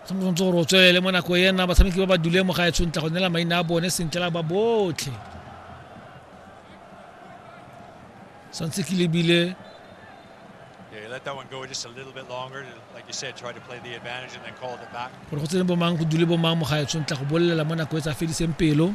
tshwanetse gore o tswelele mo nako ena batshameki ba ba dule mo gae tshwentla go nela maina a bone sentle la ba botlhe santse ke lebile gore go tsene bomang go dule bomang mo gae tshwentla go bolelela mo nako e tsa fediseng pelo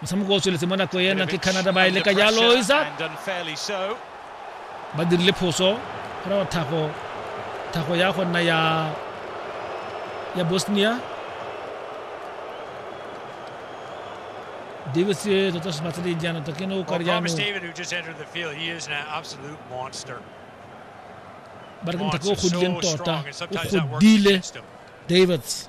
motshameko o tsweletse mo nako ena ke canada ba e leka jalo isa ba dirile phoso gore wa thago thago ya go nna ya ya bosnia davis e tota se batleleng jaana tota ke ne o kare jaanong ba re ke mothaka o godileng tota o godile davids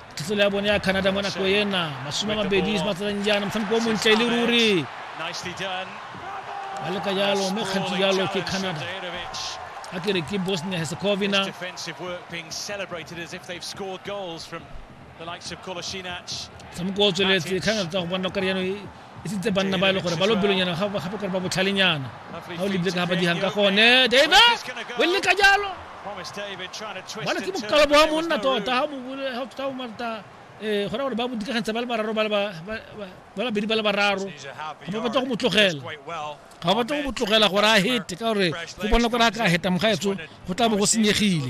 thetselo ya bone ya canada mo nako ena masome a mabedi se matsatsang jaana motshameko o montle e le ruri ba leka jalo mme kgantsi jalo ke canada a ke re ke bosnia herzegovina motshameko o tsweletse canada tsa go bona kare jaanong e sentse banna ba e le gore ba lobelonyana gape gore ba botlhalenyana ga o lebile ka ga ba digang ka gone dave o le ka jalo bana ke bokalo bo wa monna tota ga o marta um gona gore ba bodikagantsa ba le bararo ba labedi ba le bararo ga ba batla go mo tlogela ga ba batla go mo tlogela gore a hete ka gore go bona gore a ka heta mogaetso go tla bo go senyegile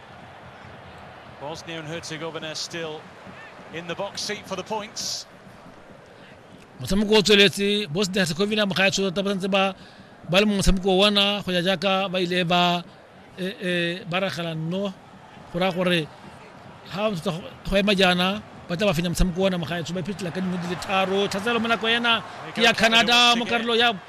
Bosnia and Herzegovina still in the box seat for the points. motshameko o tsweletse bosnia herzegovina mo ga ya tshotsa ba santse ba ba le mo motshameko wa ona go ya jaaka ba ile ba eh, eh, ba ragela nno go raya gore ga ba tshotsa go- go ema jaana ba tla ba fenya motshameko wa ona mo ga ya tsho ba iphetela ka dingwe di le tharo tlhatselo mo nako ena ke ya canada mo karolo ya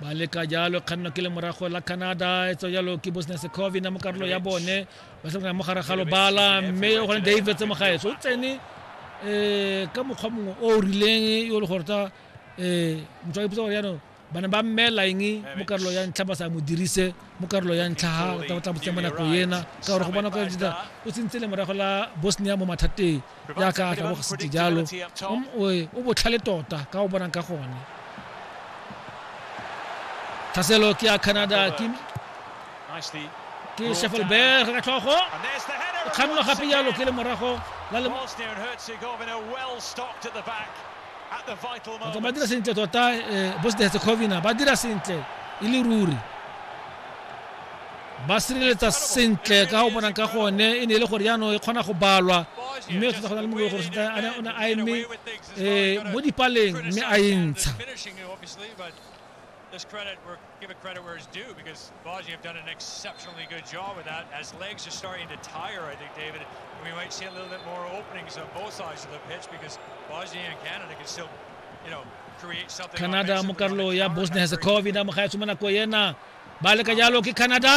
ba leka jalo kganno ke le morago la canada e tswa jalo ke bosnia secovina mo karolo ya bone ba sebana mo gare ga lobala mme gone david tse mogaetso o tsene um ka mokgwa mongwe o o rileng yo le gore ta um motho a ipotsa gore yaanong bana ba mmela eng mo karolo ya ntlha ba sa mo dirise mo karolo ya ntlha ga tla botseng mo nako ena ka gore go bona kwa o tsentse le morago la bosnia mo mathateng jaaka a tlabogositse jalo o botlhale tota ka o bonang ka gone tlhaselo ke ya canada ke ke shefelberg ka tlhogo o kgannwa gape jalo ke le morago la le ba dira sentle tota eh, bosnia herzegovina ba dira sentle e le ruri ba sireletsa sentle ka go bonang ka gone e ne e le gore jaanong e kgona go balwa mme tota go na le mongwe gore o ne a eme um mo dipaleng mme a e ntsha This credit, we're, give it credit where it's due because Baji have done an exceptionally good job with that. As legs are starting to tire, I think, David, we might see a little bit more openings on both sides of the pitch because Baji and Canada can still, you know, create something. Canada mo karolo ya Bosnia-Herzegovina mo ga e tsoma nako ena ba le ka jalo ke canada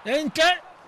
e ntle